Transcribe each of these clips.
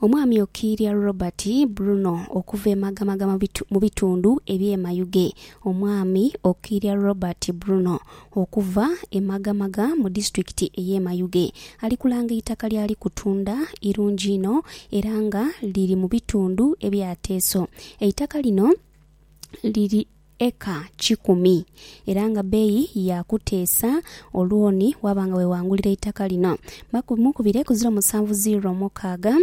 Omwami Okiria Robert Bruno okuva e Magamaga mu bitu- mu bitundu eby'e Mayuge. Omwami Okiria Robert Bruno okuva e Magamaga mu disitulikiti ey'e Mayuge ali kulanga eitaka ly'ali kutunda irungi inho era nga liri mu bitundu ebya Teso. Eitaka lino liri. eka kikumi era nga bbeeyi ya kuteesa olwoni waaba nga weewangulira eitaka lino bamukubire ku ziro musanvu ziiro mukaaga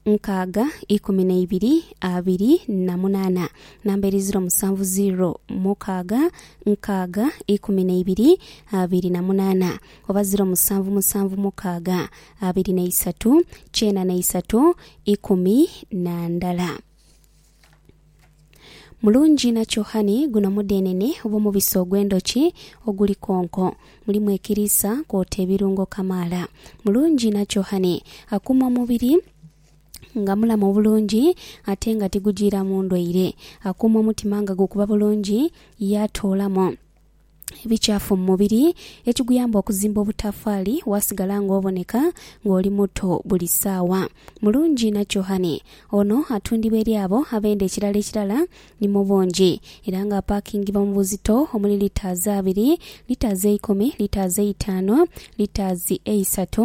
nkaaga ikumi na ibiri abiri na munaana namba eri ziro musanvu ziiro mukaaga nkaaga ikumi na ibiri abiri na munaana oba ziro musanvu musanvu mukaaga abiri na isatu kyenda na isatu ikumi na ndala. Mulungi na kyohani guno mudhenene obw'omubisi ogw'endhoki oguli konko. Mulimu ekiriisa kwota ebirungo kamaala. Mulungi na kyohani akuuma omubiri nga mulamu obulungi ate nga tigujiiramu ndwaire. Akuuma omutima nga gukuba bulungi yaatoolamu. ebikyafu mu mubiri ekiguyamba okuzimba obutafaali waasigala ng'oboneka ng'oli muto buli saawa. Mulungi na Chohane, ono atundibwa eri abo abenda ekirala ekirala, ni mu bungi era ng'apakingibwa mu buzito omuli litaazi abiri, litaazi eikumi, litaazi eitaanu, litaazi eisatu,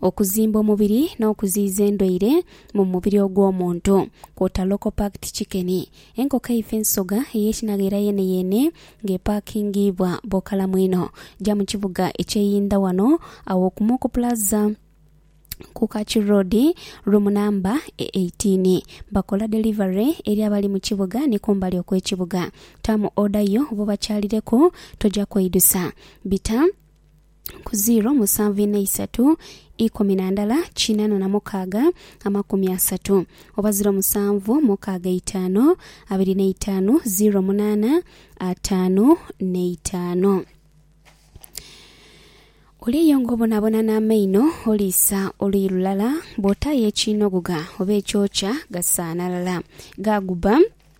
okuzimba omubiri n'okuziiza endwaire mu mubiri ogw'omuntu kwota local packed chicken. Enkoko eifa ensoga ey'ekinagheera yeeneyeene ng'epakingiibwa bw'okalamu einho, ja mu kibuga eky'e Yinda wano aw'okumuuku Plaza ku Kachi Road room namba e eighteen. Bakola delivery eri abali mu kibuga ni kumbali okw'ekibuga. Taamu order yo obobakyalireku toja kweidusa. Bita. ku ziiro musanvu inha isatu ikumi na ndala kinana na mukaaga amakumi asatu oba ziiro musanvu mukaaga itaanu abiri na itaanu ziiro munaana ataanu na itaanu. Oli eyo nga obonabona n'amaino oliisa oluyi lulala, bw'otaayo ekiinogogha oba ekyokya gasaanha ghala, ghaagubba.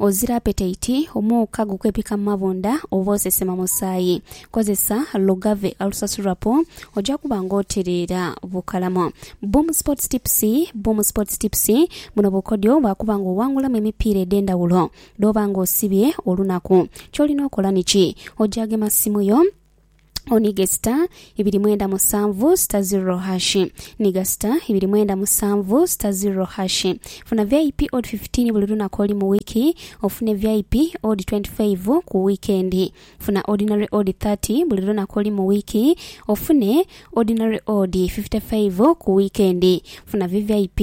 Ozira apetaiti, omwoka gukwepika mu mabunda oba osesema musaayi. Kozesa Lugave Ulcer Syrup oja kuba nga otereera bukalamu. Boom Sports Tips Boom Sports Tips buno bukodyo bwa kuba nga owangulamu emipiira edh'endhawulo dh'oba nga osibye olunaku. Ky'olina okola niki? Oja gema simu yo, Onige sita ibiri mwenda musanvu sita zirro hashi Niga sita ibiri mwenda musanvu sita zirro hashi Funa VIP odi fifitiini buli lunaku oli mu wiiki ofune VIP odi twenti faivu ku wiikendi Funa Ordinary odi thirty buli lunaku oli mu wiiki ofune Ordinary odi fifite faivu ku wiikendi Funa VVIP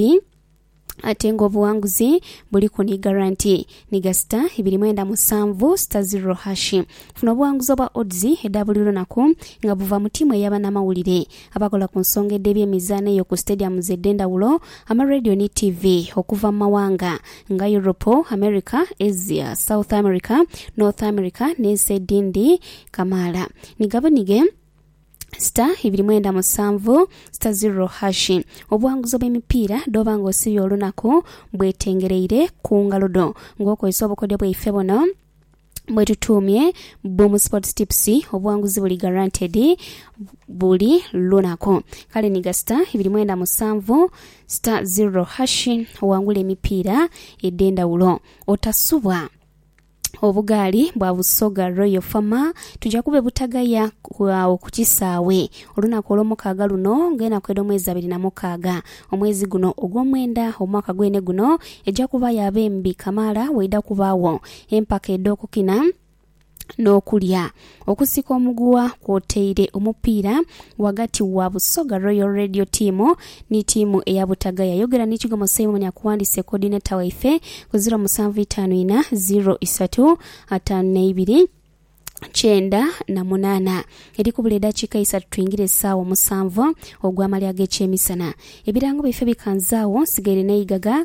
Ate nga obughanguzi buliku ni garanti ni ga sita ibiri mwenda musanvu, sita zirro hashi. Funa obughanguzi obwa odds edha buli lunaku nga buva mu tiimu eya banamawulire, abakola ku nsonga edh'ebyemizaano eyo ku stadiums edh'endhawulo, amarediyo ni tiivi okuva mu mawanga nga Europe, America, Asia, South America, North America n'ensi edhindi kamaala. Ni gabunige. sita ibiri mwenda musanvu sita ziro hashi. Obuwanguzi obw'emipiira dh'oba nga osibye olunaku bwetengereire ku ngalo dho nga okozesa obukodyo bwaife buno bwetutuumye Boom Sports Tips. Obuwanguzi buli guaranteed buli lunaku. Kale niga sita ibiri mwenda musanvu sita ziro hashi owangule emipiira edh'endhawulo. Otasubwa! Obugaali bwa Busoga Royal Farmer tuja kube Butagaya agho ku kisaawe olunaku olwomukaaga luno ng'enaku edh'omwezi abiri na mukaaga omwezi guno ogwomwenda omwaka gwene guno eja kuba ya bembi kamaala waidha kubaagho empaka edh'okukina n'okulya. Okusika omuguwa kwotaire omupiira ghagati wa Busoga Royal Radio Team ni tiimu eya Butaga yayogera ni Kigomo Simon akuwandiise Coordinator waife ku ziro musanvu itaanu ina, ziro isatu, ataanu na ibiri, kyenda na munaana. Eri kubula edakiika isatu twingire esaawa omusanvu ogw'amalya ag'ekyemisana. Ebirango byaife bikanze agho nsigaire n'eigaga